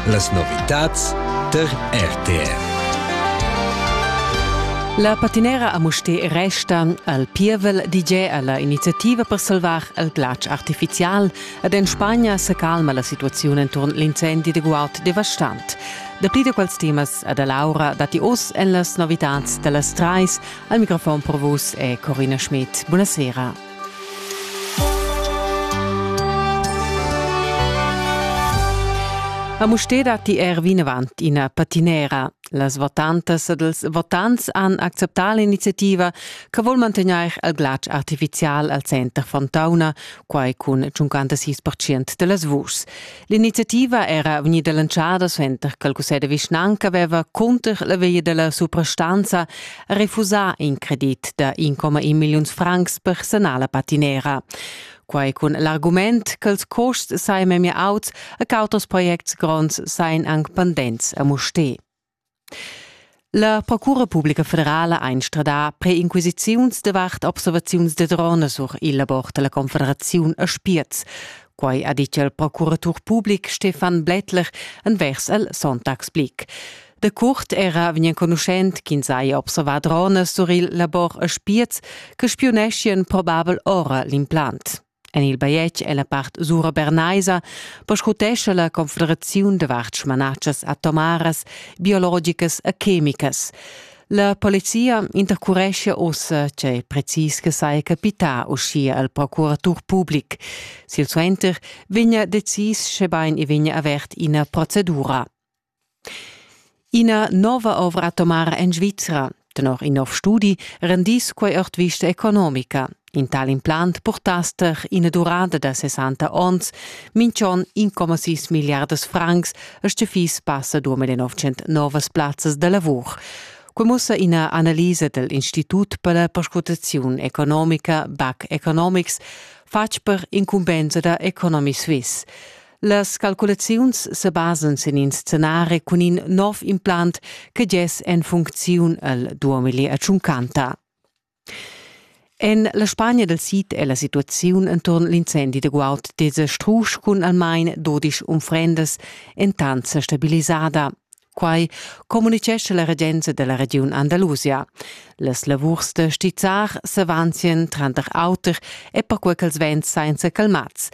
Las novitads tar RTR. La patinera a Mustér restan al pievel DJ alla iniziativa per salvar il glatsch artificial ed en Spagna se calma la situazione intorno all'incendi de Gualt devastant. Da pli da quels temas e da Laura datti oz en las novitads da las Treis. Al microfon per vus è Corina Schmidt. Buonasera. A Mustér datti er vinavant ina patinera. Las votantas ed els votants han acceptà l'iniziativa che vuol mantegnair il glatsch artificial al center Fontauna, quai cun 56% da las vuschs. L'iniziativa era vegnida lanciada suenter che il cussegl de vischnanca aveva cunter la via della suprastanza refusà in credit da 1,1 milliuns francs per sanar la patinera. Quai cun l'argument ch'ils custs sain memia auts e ch'auters projects gronds sain anc pendents a Musté. La Procura publica federala ha instradà preinquisiziuns davart observaziuns da drona sur il labor da la Confederaziun a Spiez. Quai ha ditg il procuratur public Stefan Blättler envers el Sonntagsblick. Da curt era vegn enconuschent ch'ins haja observà dronas sur il labor a Spiez che spiuneschien probabel ora l'implant. En il bajetg è la part sura bernaisa perscrutescha la Confederaziun davart smanatschas atomaras, biologicas e chemicas. La polizia intercurescia ussa che precis che sai capità uschia al procuratur public. Silsuenter vegna decis schebain i vegna avert ina procedura. Ina nova ovra atomara en Svizra. Tenor in nov studi rendiss quei ord vista economica. In tal implant purtass ter ina durada da 60 onns, minchon 1,6 milliardas francs, e sche fiss passa 2900 novas plazzas da lavur. Quei mussa ina analisa dell Institut per la perscrutaziun economica BAC Economics, fatg per incumbensa da Economy Suisse. Las calculaziuns sebasan sin in scenari cun in nov implant che gess en funcziun el 2050. En la Spagna del Sid è la situaziun enturn l'incendi de guaud desestrusch cun almain 12 unfrendas entant stabilisada. Quai communitgescha la regenza della regiun Andalusia. Las lavurs da stizzar s'avanzien tranter auter e perquei ch'els vents sainza calmats.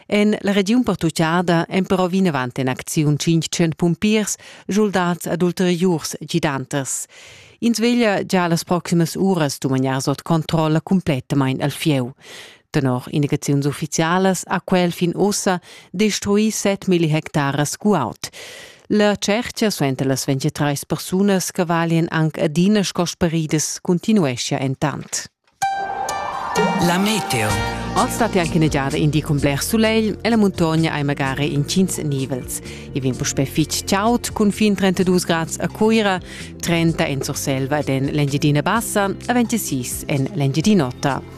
En la regiun pertuccada èn però vinavant en acziun 500 pumpiers, soldats ad ulteriurs gidanters. Ins veglia gia las proximas uras dumagnar sot controlla cumplettamain al fieu. Tenor indicaziuns uffizialas ha quel fin ussa destruì set milli hectares guaud. La tschertga suenter las 23 persunas che valien anc adina sco speridas continueschia entant. La meteo. Oz stat anche negiada in di con bler soleil e la montagna hai magari incins nivels. I vin puspè fitg chaud cun fin 32 grad a Cuira, 30 en Surselva ed en l'Engiadina Bassa e 26 en l'Engiadin'Ota.